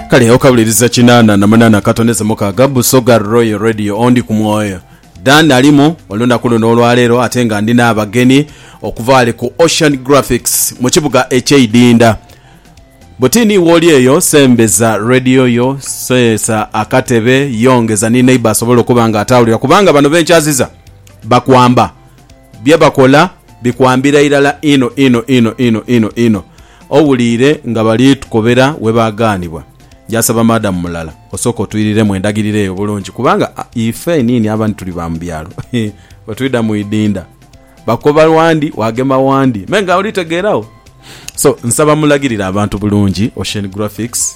kale okabuliriza kinana na munana katoneze mukaga busoga royal radio ondi ku mwoyo dan alimu olunaku luno olwaleero ate nga ndina abageni okuva wali ku ocean graphics mu kibuga ekyeidinda butini wooli eyo sembeza radio yo seesa akatebe yongeza ni neighbor asobole okuba nga atawulira kubanga bano benkyaziza bakwamba Bye bakola bikwambira irala inho inho inho inho inho inho. Owuliire nga bali tukobera we baagaanibwa. Njasaba Madam Mulala osooke otwiriremu endagiriro eyo bulungi kubanga ife einiini abandi tuli ba mu byalo bwe twidha mu idinda bakoba wandi waagema wandi me nga oli tegeeragho. So nsaba mulagirire abantu bulungi Oceanographics.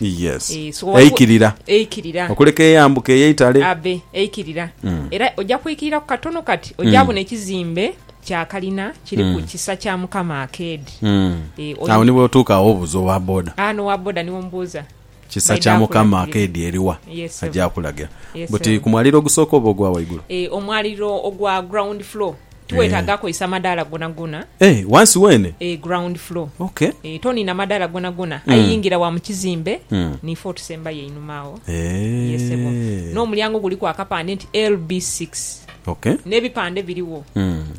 Yes. Eeh, so waliwo Eikirira. Eikirira. Okuleka eyambuke eyo eitale. Abe, eikirira. Era oja kwikiriraku katono kati, oja bona ekizimbe kya kalina kiri ku Kisa kya Mukama Arcade. Eeh, Agho oyi- ni bw'otuuka agho obuuza owa boda. Ah, n'owa boda ni omubuuza. Kisa Baidha kya Mukama akulagirira. Arcade eri wa? Yes, sebo. Aja akulagira. Yes, Buti sebo. ku mwaliro ogusooka oba ogwa waigulu? Eeh, omwaliro ogwa ground floor. Tiwetaaga kozesa madaala gonagona. Eh, wansi weene? Eh, ground floor. Ok. Eh, toniina madaala gonagona. Aye yingira wa mu kizimbe, ni fo otusembayo einhuma agho. Ye, sebo. Eh. N'omulyango guliku akapande nti LB six. Ok. N'ebipande birigho.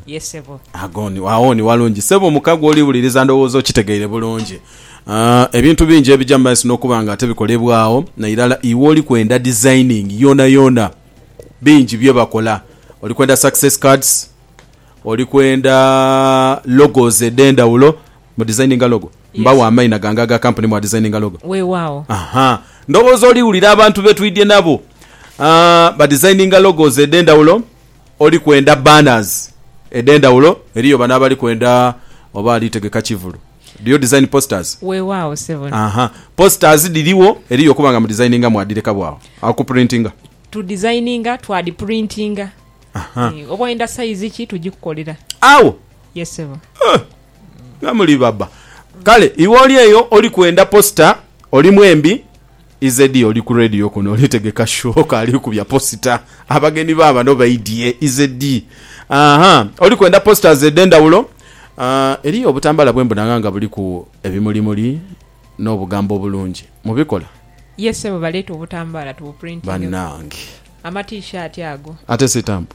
Ye, sebo. Agho ni, agho ni walungi. Sebo, muka gw'oliwuliriza ndowooza okitegeire bulungi. Ah, ebintu bingi ebija mu maiso n'okuba nga ate bikolebwagho, nairala iwe oliku enda designing yoonayoona. bingi bye bakola. Oli kwenda success cards, oli kwenda logos edh'endhaghulo, mudizayininga logo? Mbagho amaina gange aga kampuni mwadizayininga logo? Weewaawo. Aha. Ndhowooza oliwulira abantu be twidhye nabo badizayininga logos edh'endhaghulo. Oli kwenda banners edh'endhaghulo? Eriyo bano abali kwenda oba ali tegeka kivulu. Do you design posters? Weewaawo ssebo. Aha. Posters dhiriwo, eriyo okuba nga mudizayininga mwadhireka bw'agho. Okupurintinga? Tudizayininga twadhipurintinga. Aha. Eeh, oba oyenda sayizi ki tugikukolera. Agho? Yes ssebo. Huh! Nga muli baba. Kale iwe oli eyo oli kwenda posita, oli mwembi. Izedie oli ku radio kuno oli tegeka show kaali kubya posita abagenyi ba bano baidhye izedie ahaa oli kwenda posters edhendhawulo aah eriyo obutambala bwe mbonagha nga buliku ebimuli muli no bugambo obulungi mubikola? Yes sebo baleete obutambala tubu printingeku. Banange. Ama t-shirt ago. Ate sitampu.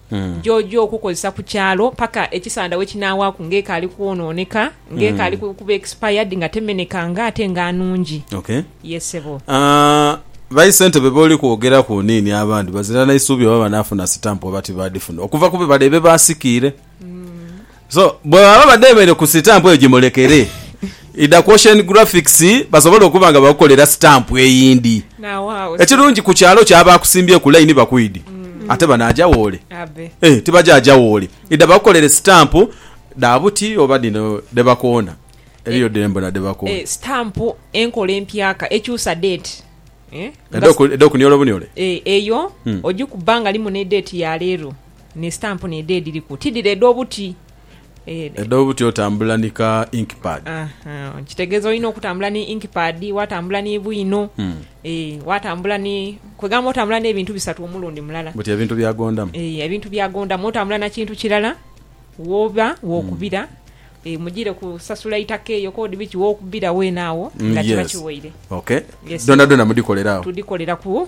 gy'oja okukozesa ku kyalo paka ekisanda we kinaawaaku nga ekaali kwonooneka, nga ekaali kuba expired, nga temenekanga ate nga nungi. Okay. Yes ssebo. Ba issentebe b'oli kwogeraku oniini abandi bazira na isuubi oba banaafuna sitampu oba tibadifuna okuva ku bibala ebyo baasikiire? So bwe baba badheemeire ku sitampu eyo gimulekere idha ku Ocean Graphics basobole okuba nga bakukolera sitampu eyindi. N'aghagho si. Ekirungi ku kyalo kyo abo akusimbyeku layini bakwidi ate banaaja wooli? Abe. Ee, tibaja aja wooli. Idha bakukolere sitampu dha buti oba dhino dhe bakoona. Eriyo dhe mbona dhe bakoona. Ee, sitampu enkola empyaka ekyusa deeti. Ee, nga. Edh'oku, edh'okuniola obuniole? Ee, eyo ogikuba nga limu n'edeeti ya leero. Ni stamp n'edho edhiriku ti dhire edh'obuti. Edh'obuti otambula ni ka ink pad. Kitegeza olina okutambula ni ink pad, watambula ni bwino, watambula ni, kwegamba otambula n'ebintu bisatu omulundi mulala. Buti ebintu bya gondamu. Eeh ebintu bya gondamu. Otambula na kintu kirala woba wokubira. Mujire ku sasula itaka eyo kodi biki wokubira wene awo nga kiba kiwaire. Okay. Yes. Dhonadhona mudhikolera agho? Tudhikolera ku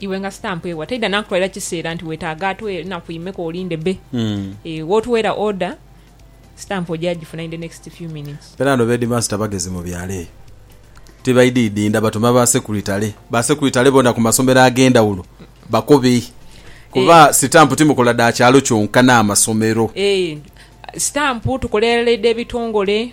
Iwe nga stamp ewa taidha nakutwalira kiseera nti wetaaga atuwe naku imeka olinde be eeh wotuweera order stamp oja gifuna in the next few minutes. Fena no b'headmaster bagezi mu byalo eyo tibaididinda batuma ba sekuritale ba sekuritale bona ku masomero agendhawulo bakobe kuba sitampu timukola dha kyalo kyonka n'amasomero. Eeh stampu tukolerera edh'ebitongole.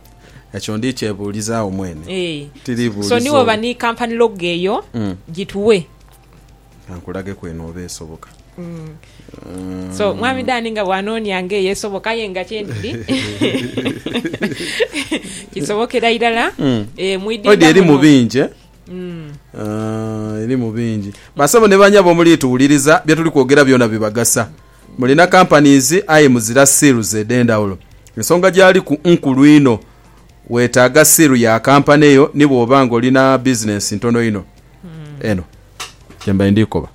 Ekyo ndi kyebuulizagho mwene. Ee. Tiri buulizo. So ni woba ni company logo eyo, gituwe. Kankulageku eno oba esoboka. So Mwami Dan nga bw'anoonia nga eyo esoboka aye nga kye ndidi kisobokera irala. Ee, mwidinda muno. Odi eri mu bingi, eh? Eri mu bingi. Basebo ni banyabo omuliituwuliriza, bye tuli kwogera byona bibagasa. Mulina companies aye muzira seals edhendhawulo. Ensonga gyaliku nkulu inho. Wetaaga seal ya company yo ni bwoba nga olina business ntono inho. Eno gyembaire ndhikoba.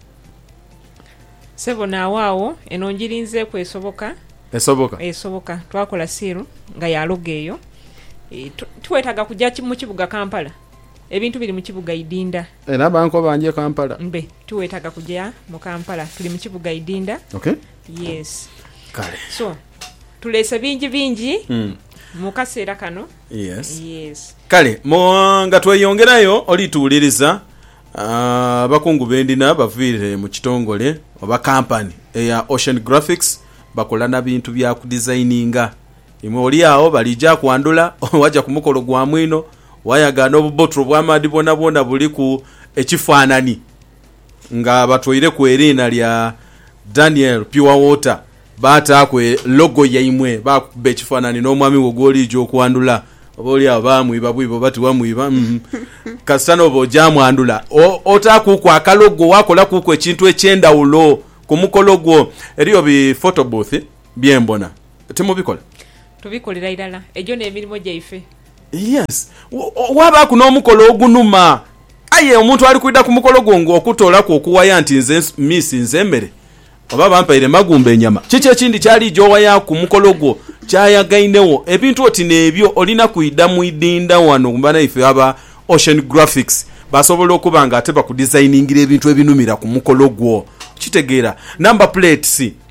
Ssebo naawe agho eno njirinzeeku esoboka. Esoboka? Esoboka. Twakola seal nga ya logo eyo. Tiwetaaga kuja mu kibuga Kampala. Ebintu biri mu kibuga Idinda. Era bankoba nje Kampala. Mbe tiwetaga kuja mu Kampala tuli mu kibuga Idinda. Ok. Yes. Kale. So tulese bingi bingi mu kaseera kano. Yes. Yes. Kale nga tweyongerayo oli tuwuliriza, abakungu be ndina baviire mu kitongole oba kampani eya Ocean Graphics. Bakola na bintu bya kudizayininga Imwe oli agho baliija kwandhula, waja ku mukolo gwa mwino, wayaga n'obubotulo bw'amaadhi bwonabwona buliku ekifaanani nga batweireku eriina lya Daniel Pure Water, baataaku logo yaimwe, baakukuba ekifaanani n'omwami wo gw'oliija okwandhula. Oba oli agho baamwiba bwiba oba tibamwiba, kasita n'oba oja mwandhula otaakuuku akalogo, waakolakuuku ekintu eky'endhawulo ku mukolo gwo. Eriyo bi photo booth bye mbona Timubikola? Tubikolera irala. Egyo n'emirimo gyaife. Yes. Waabaaku n'omukolo ogunuma. Aye omuntu ali kwidha ku mukolo gwo nga okutoolaku okuwaya nti nze mmiisinze emere oba bampaire magumba enyama. Kiki ekindi ky'aliija owaya ku mukolo gwo ky'ayagainegho? Ebintu oti n'ebyo olina kwidha mu idhindha wano mu banaife aba Ocean Graphics basobola okuba nga ate bakudizayiningira ebintu ebinumira ku mukolo gwo. Okitegeera? Number plates.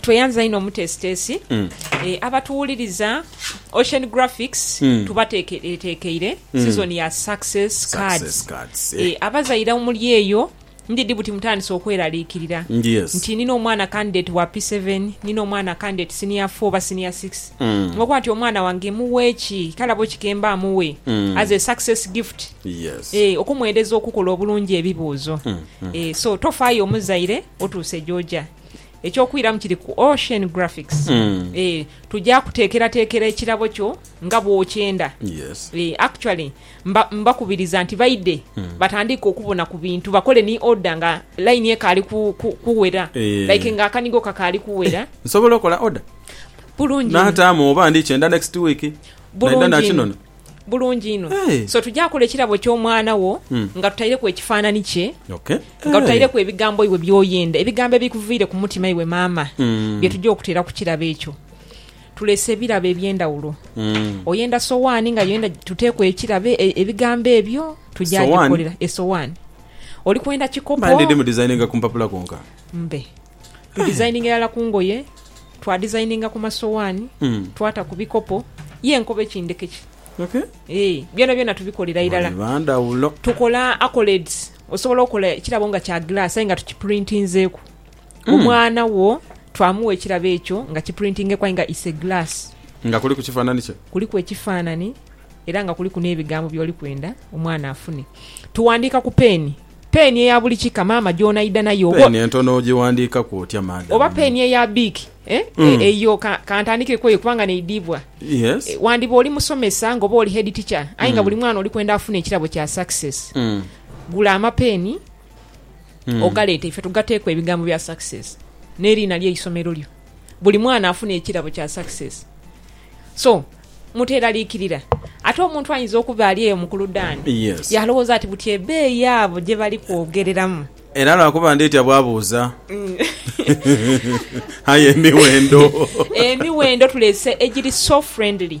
Tweyanza inho omuteesiteesi. Abatuwuliriza Ocean Graphics tubateekereteekeire sizoni ya Success Cards. Abazaire omuli eyo ndidhi buti mutandise okweraliikirira nti nina omwana kandideti wa P7, nina omwana kandideti siniya fo oba siniya sikisi. Okuba nti omwana wange mughe ki? Kale abo ki ke mbaa mughe as a success gift? Yes. Eeh okumwereza okukola obulungi ebibuuzo eeh so tofaayo omuzaire otuuse gy'oja. Eky'okwiramu kiri ku Ocean Graphics eeh tuja kuteekerateekera ekirabo kyo nga bw'okyenda Yes. eeh actually mba mbakubiriza nti baidhe batandiike okubona ku bintu bakole ni order nga line ekaali ku ku kuwera Eeh. like nga akanigo kakaali kuwera Nsobola okola order? Bulungi inho. Naataamu oba ndikyenda next week? Naidha Bulungi inho. nakinona? Bulungi inho. So tuja kola ekirabo ky'Omwana wo nga tutaireku ekifaanani kye, nga tutaireku ebigambo iwe by'oyenda, ebigambo ebikuviire ku mutima iwe maama, bye tuja okuteera ku kirabo ekyo. Tuleese ebirabo eby'endhawulo. Oyenda sowaani ngaye oyenda tuteeku ekirabo, ebigambo ebyo tuja dhikolera. Esowaani. Oli kwenda kikopo? Mbe. Tudizayininga irala ku ngoye, twadizayininga ku masowaani, twata ku bikopo, ye nkobe ki ndeke ki, ee, byonabyona tubikolera irala. Tukola accolades, osobola okola ekirabo nga kya gilaasi aye nga tukipurintinzeeku. Omwana wo twamuwa ekirabo ekyo nga kipurintingeeku aye nga it's a glass. Nga kuliku kifaanani kye. Kuliku ekifaanani era nga kuliku n'ebigambo by'oli kwenda omwana afune. Tuwandiika ku peeni. Peeni eya buli kika maama gy'onaidha nayo oba. Peeni entono ogighandiikaku otya madam? Oba peeni eya biiki eh? Eyo ka ntandikire ku eyo kubanga neidhibwa. Wandiba oli musomesa nga oba oli head teacher aye nga buli mwana oli kwenda afune ekirabo kya success, gula amapeeni ogaleete ife tugateeku ebigambo bya success n'eriina ly'eisomero lyo. buli mwana afune ekirabo kya success so muteralikirira ate omuntu ayinza okuba ali eyo mukuludani yes. yalowoza ati buti ebeeyi abo gyebali kwogereramu era lwakuba nditya bwabuuza mm. aye emiwendo emiwendo tulese egiri so friendly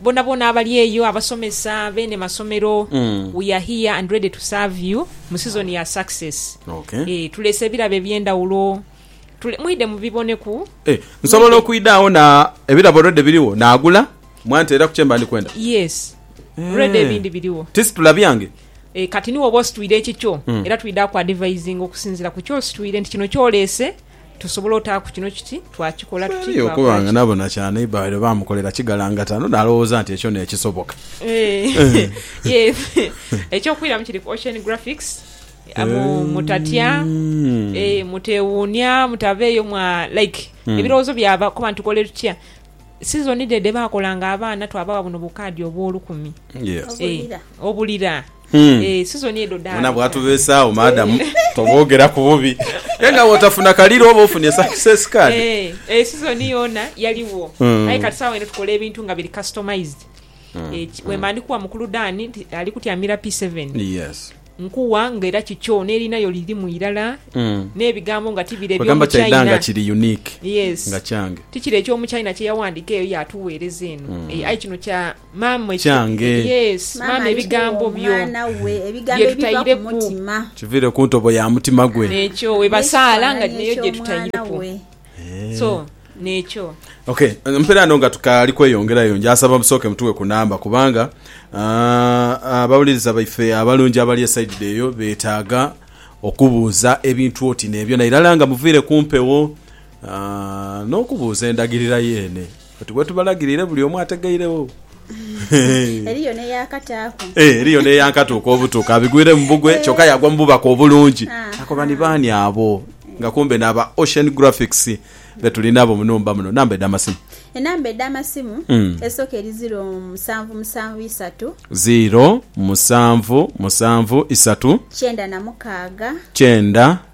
Bonabona abali eyo, abasomesa, beene masomero, we are here and ready to serve you mu season ya success. Eeh, tuleese ebirabo ebyendawulo. Tule, mwidhe mubiboneku. Eeh, nsobola okwidha agho na ebirabo already birigho nagula mwa ntera ku kyemba ndi kwenda? Yes, already ebindi birigho. Tisitula byange? Eeh, kati nighe oba ositwire ekikyo era twidha ku advisinga okusinzira ku kyositwire nti kino kyoleese. Tusobola otaaku kino kiti, twakikola tuti, twakolaaki? Aye okuba nga nabona kya neighbour waire baamukolera kigalangata, no nalowooza nti ekyo n'ekisoboka. Eky'okwiramu kiri ku Ocean Graphics. Mutatya, muteewuunia, mutaveeyo mwa like ebirowoozo byaba kuba nti tukole tutya. Sizoni dhe dhe baakolanga abaana twabagha buno bukaadi obw'olukumi obulira. Eeh season edho daaleka. Bona bwatubesaagho madam toboogeraku bubi aye nga bwotafuna kaliro oba ofunye success card. Eeh eeh season yoona yaligho aye kati sawa eno tukola ebintu nga biri customized eeh wemba ndikuwa mukulu Dan nti alikutyamira P seven nkuwa nga era kikyo nerinha yo lirimu irala nebigambo nga tibire byomu China yes tikiri ekyomu China kyeyawandika eyo yatuwereza eno eeh aye kino kya kyange. Maama ebigambo byo byetutaireku. Kiviire ku ntobo ya mutima gwe. Nekyo webasaala nga neyo gyetutaireku so nekyo. Ok mpere ano nga tukaali kweyongerayo ngyasaba musooke mutuwe ku namba kubanga abawuliriza baife abalungi abali eside eyo betaaga okubuuza ebintu oti nebyo nairala nga muviire ku mpewo nokubuuza endagirira yeene. Oti bwetubalagirire buli omu ategeiregho. Eriyo n'eyakataaku. Ee, eriyo n'eyankatuuka obutuuka, abigwiremu bugwe kyoka yagwa mu bubaka obulungi. Akoba ni baani abo? Nga kumbe n'aba Ocean Graphics be tuli nabo mu nhumba muno. Namba edh'amasimu. Enamba edh'amasimu, esooka eri ziro musanvu musanvu isatu. Ziro musanvu musanvu isatu. Kyenda na mukaaga. Kyenda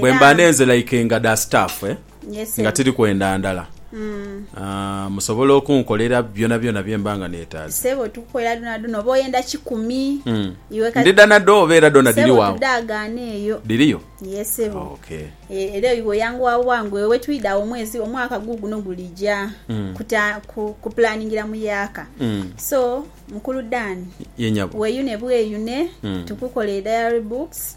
Bwemba nenze like nga da staff eh nga tiri kwenda ndala ah musobola okunkolera byona byona byemba nga netaaze. Sebo tukukolera dhona dhona oba oyenda kikumi iwe kati. Ndidha na dho oba era dhona dhiri wagho. Sebo tudhagaana eyo. Dhiriyo? Yee sebo. Oh ok. Era iwe oyanguwa bwangu ewe twidha agho omwezi omwaka guguno gulija ku planingira mu yaaka so mukulu Dan. Yee nyabo. Weyune bweyune tukukolere diary books.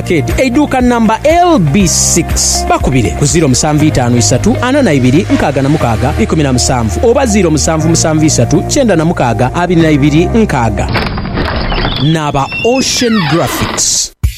Arcade, eiduuka namba LB six, bakubire ku ziiro musanvu itaanu isatu ana na ibiri nkaaga na mukaaga ikumi na musanvu oba ziiro musanvu musanvu isatu kyenda na mukaaga abiri na ibiri nkaaga. N'aba Ocean Graphics.